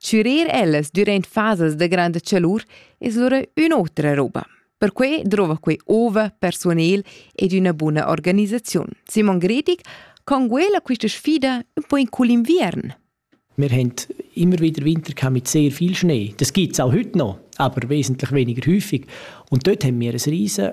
Chürir ellas dürant fasas da granda chalur es lura ün'otra roba. Perquai drova quei ova, persunel ed üna buna organisaziun. Simon Gredig conguela quista sfida un po in cul inviern. Wir haben immer wieder Winter mit sehr viel Schnee. Das gibt es auch heute noch, aber wesentlich weniger häufig. Und dort haben wir ein riesen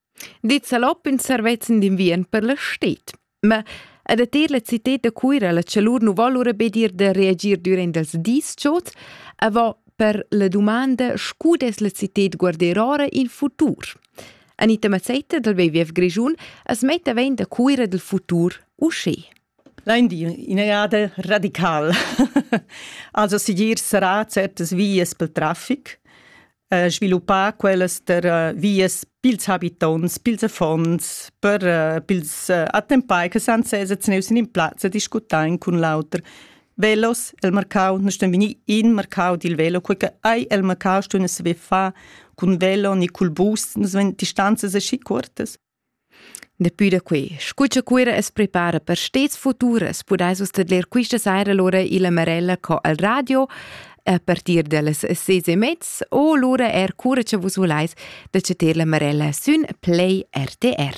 dit salop in servezzin d'inviern per la stet. Ma ed a ter la cited da Cuira la chalur nu vol ora be dir da reagir durant els dis chots, avant per la domanda scu des la cited guarder ora in futur. Anita Mazzetta dal BVF Grischun as metta ven da Cuira del futur uschè. Lain dir üna jada radical. Also sigir sarà certas vias pel trafic, sviluppar quellas der vias pils habitonts, pils affons, per pils attempai che san seza tgnüs in ün plaz e discutain cun l'auter. Velos el marcau, nus ston vegnir in marcau dil velo, quei che ei el marcau ston saver far cun velo ni cul bus, nus vein distanzas aschi cuortas. Dapi da quei, scu cha Cuira as prepara per stets futur, as pudais vus tadler quista saira lura illa Marella co al radio a partir da las ses e mezz o lura eir cura cha vus vulais da chatter la Marella sün Play RTR.